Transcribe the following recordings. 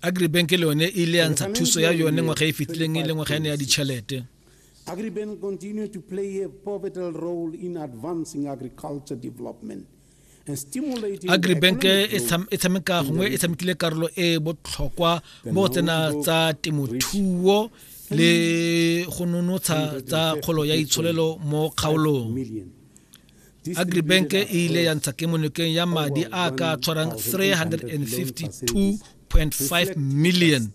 agribank le yone e ile ya ntsha thuso ya yone ngwaga e fetileng e le ngwaga ene ya ditšhelete Agribank continue to play a pivotal role in advancing agriculture development agribank e, e tshameka gongwe e tshamekile karolo e e botlhokwa mo tsena tsa temothuo le go nonotsha tsa kgolo ya itsholelo mo kgaolong agribank e ile ya ntsha kemonokeng ya madi a ka tshwarang 352.5 million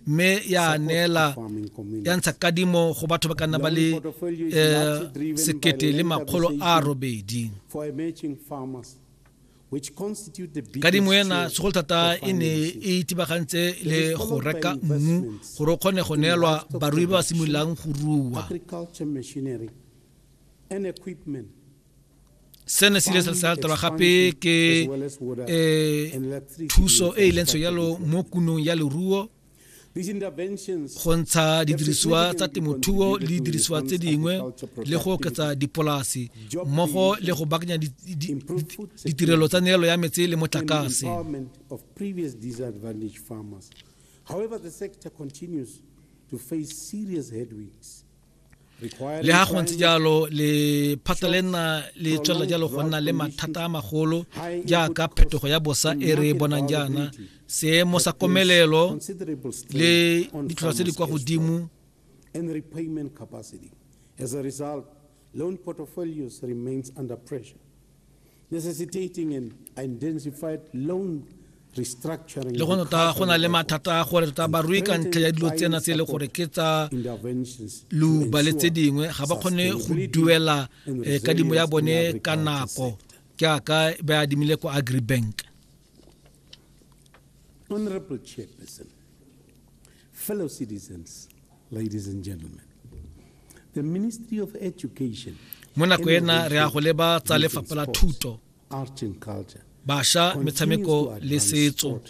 mme ya neela ya ntsha kadimo go batho ba ka nna ba le eh, sekete le makgolo a robedi kadimo ena segolo thata e ne e itibagantse le go reka mmu gore o kgone go neelwa barui ba ba simololang go rua sena se ile sa latela gape ke um thuso e e lentsho yalo mo kunong ya leruo go ntsha didirisiwa tsa temothuo le didirisiwa tse dingwe le go oketsa dipolasi mmogo le go bakanya ditirelo tsa neelo ya metse le motlakase However, the sector continues to face serious headwinds. le ga go ntse jalo le phata le nna le tswelela jalo go nna le mathata a magolo jaaka phetogo ya bosa e re bonang jaana seemo sa komelelo le ditlhotlhwa tse di kwa godimo necessitating an intensified loan restructuring le go nota go na le mathata a gore tota barui ka ntlha ya dilo tsena se e le gore ke tsa luba le tse dingwe ga ba kgone go duela eh, kadimo ya bone ka nako ke aka ba adimile ko agribank honorable chairperson fellow citizens Ladies and gentlemen, the Ministry of Education mo nako ena re ya go leba tsa lefapha la thuto basha metshameko le setso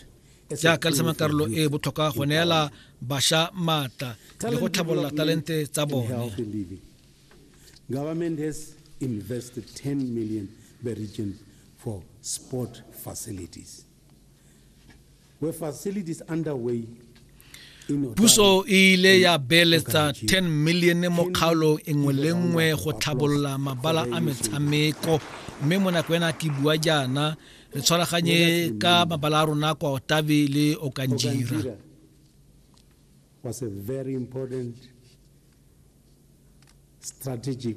jaaka le sama karolo e botlhokwa go neela basha maatla le go tlhabolola talente tsa bone government has invested 10 million for sport facilities Puso e ile ya beeletsa 10 milione mo kgaolong e nngwe le nngwe go tlhabolola mabala a metshameko mme mo nako ena ke bua jaana re tshwaraganye ka mabala a rona kwa otabe le okanjira was a very important strategic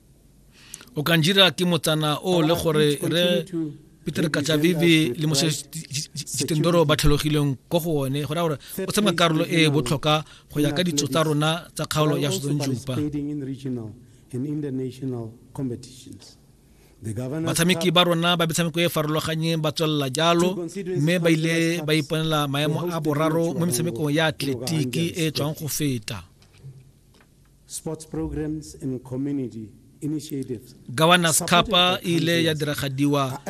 o ka njira ke motsana o le gore re peter katsavivi le mose jitendoro ba tlhalogileng ko go one go raya gore o tshameka karolo e e botlhoka go ya ka ditso tsa rona tsa kgaolo ya sotsonjupa batshameki ba rona ba metshameko e e farologanyeng ba tswelela jalo mme ba ile ba iponela maemo a boraro mo metshamekong ya atletiki e tswang go feta Governors Kapa e ile ya diragadiwa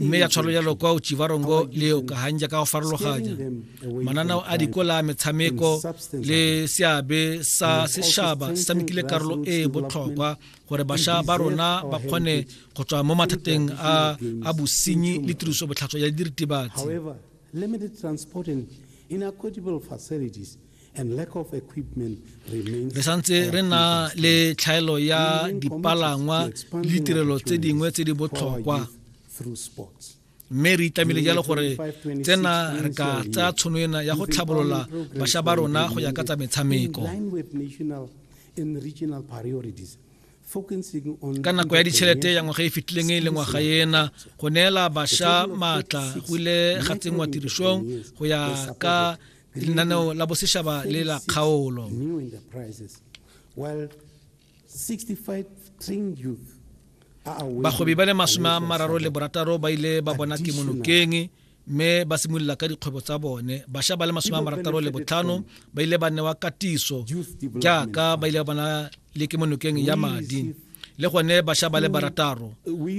mme ya tshwalo jalo kwa Uchivarongo le Okahanja ka go farologanya mananao a dikola a metshameko le seabe sa sešaba se tshamekile karolo e e botlhokwa gore bašwa ba rona ba kgone go tswa mo mathateng a, a bosenyi le tiriso botlhatswa ya diritibatsi Re santse re na le tlhaelo ya dipalangwa le ditirelo tse dingwe tse di botlhokwa mme re itlamile jalo gore tsena re ka tsaya tshono ena ya go tlhabolola bašwa ba rona go ya ka tsa metshameko ka nako ya ditšhelete ya ngwaga e fetileng e le ngwaga ena go neela bašwa maatla go ile ga tsenngwa tirisong go ya ka lenaneo la boseshaba le la kgaolo bagwebi ba le masome a mararo le borataro ba ile ba bona kemonokeng mme ba simolola ka dikgwebo tsa bone bašwa ba le masome a marataro le botlhano ba ile ba newa katiso jaaka ba ile ba bona le kemonokeng ya madi le gone bašwa ba le barataro